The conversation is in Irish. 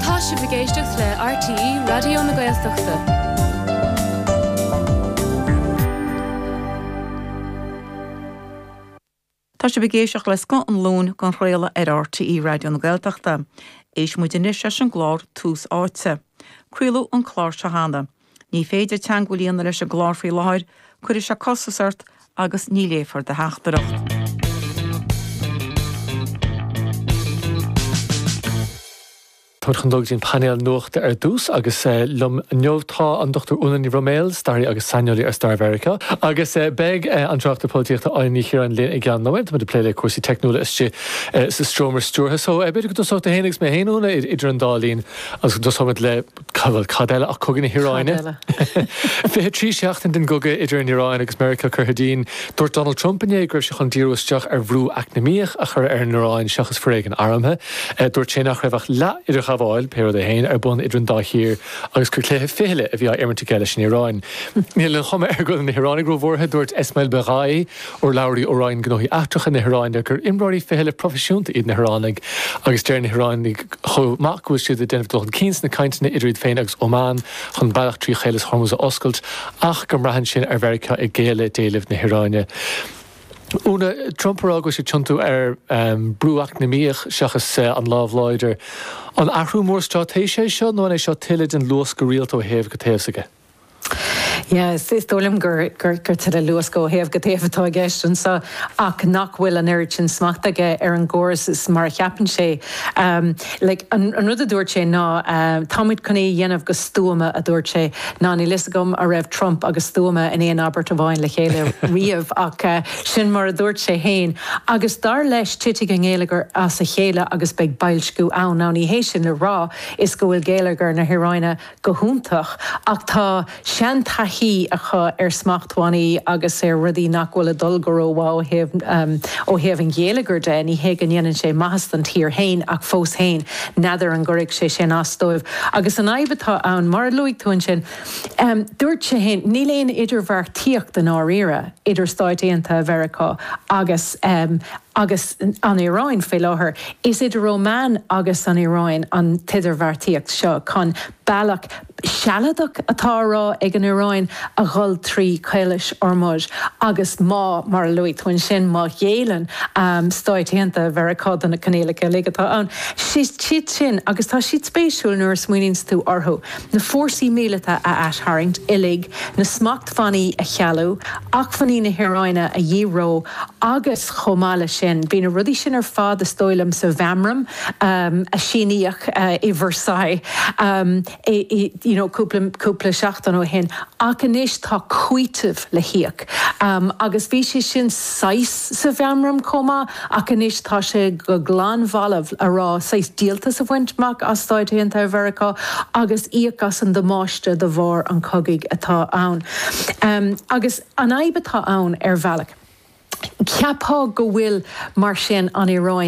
Tá sibh ag éisteacht le RTÉ Raidió na Gaeltachta. Tá sibh ag éisteacht le scoth an Luain dhá chraoladh ar RTÉ Raidió na Gaeltachta. Éistfidh muid anois leis an gclár Tús Áite. Craoladh an clár seo cheana. Ní féidir teagmháil a dhéanamh leis an gclár faoi láthair, cuirfidh sé costas ort agus ní léifear do theachtaireacht. Táimid chun dul go dtí an painéal nuachta ar dtús agus liom inniu tá an Dr. Úna Ní Bhroiméil, staraí agus saineolaí ar stair Mheiriceá, agus beidh an tráchtaire polaitíochta Áine Ní Chiaráin linn i gceann nóiméad, táimid ag plé le cúrsaí teicniúla istigh sa seomra stiúrtha. So b'fhéidir go dtosóidh tú féin agus mé féin, Úna, idir an dá linn agus go dtosóimid le Bhuel, cad eile ach Cogadh na hIaráine. Fiche trí sheachtain den gcogadh idir an Iaráin agus Meiriceá curtha dínn. Dúirt Donald Trump inné go raibh sé chun díriú isteach ar bhrú eacnamaíoch a chur ar an Iaráin seachas foréigean armtha. Dúirt sé nach raibh ach leath-idirghabháil, pé rud é féin, ar bun idir an dá thír agus gur cluiche fichille a bhí á imirt aige leis an Iaráin. Níl an chuma air go bhfuil na hIaránaigh róbhuartha, dúirt Esmail Baghaei, urlabhraí ó Roinn Gnóthaí Eachtracha na hIaráine gur imreoirí fichille proifisiúnta iad na hIaránaigh agus deir na hIaránaigh chomh maith go bhfuil siad ag déanamh dul chun cinn sna cainteanna idir iad féin agus Óman chun bealach trí Chaolas Hormuz a oscailt ach go mbraitheann sin ar Mheiriceá ag géilleadh d'éilimh na hIaráine. Úna, Trump ag rá go bhfuil sé ag tiontú ar brú eacnamaíoch seachas an lámh láidir. An athrú mór straitéise é seo nó an é seo tuilleadh den luascadh rialta ó thaobh go taobh s'aige? Yes, is dóigh liom gur, gur, gur tuilleadh luascadh ó thaobh go taobh atá i gceist anseo ach nach bhfuil an oiread sin smachta aige ar an gcóras mar a cheapann sé. Like, an, an rud a dúirt sé ná tá muid chun é a dhéanamh go stuama, a dúirt sé. Now, níl fhios agam a' raibh Trump agus stuama in aon abairt amháin le chéile riamh ach sin mar a dúirt sé fhéin agus dar leis titfidh an geilleagar as a chéile agus beidh boilsciú ann. Now, ní hé sin le rá is go bhfuil geilleagar na hIaráine go hiontach ach tá seantaithí acu ar smachtbhannaí agus ar rudaí nach bhfuil ag dul go rómhaith ó thaobh ó thaobh an gheilleagair de. Ní hé go ndéanann sé maitheas don tír féin ach fós féin n'fheadar an gcuirfidh sé sin as dóibh. Agus an fhadhb atá ann, mar a luaigh tú ansin, dúirt sé féin, níl aon idirbheartaíocht i ndáiríre idir Stáit Aontaithe Mheiriceá agus. agus an Iaráin faoi láthair. Is idir Óman agus an Iaráin an t-idirbheartaíocht seo chun bealach sealadach atá á rá ag an Iaráin a dhul trí Chaolas Hormuz agus má, mar a luaigh tú ansin, má ghéilleann Stáit Aontaithe Mheiriceá do na coinníollacha uilig atá ann. Is iad sin, agus tá siad spéisiúil nuair a smaoiníonns tú orthu, na fórsaí míleata a aistharraingt uilig, na acmhainní a chealú, acmhainní na hEaráine a dhíreo, agus chomh maith leis sin, bhí na rudaí sin ar fad is dóigh liom sa mheamram a síníodh i Versailles, you know, cúpla seachtain ó shin ach anois tá cúiteamh le híoc agus bhí sé sin saghas sa mheamram chomh maith. Ach anois tá sé go lom balbh a rá saghas díoltas a bhaint amach as Stáit Aontaithe Mheiriceá agus íoc as an damáiste de bharr an chogaidh atá ann. Agus an fhadhb atá ann ar bhealach. Cheapfá go bhfuil, mar sin, an Iaráin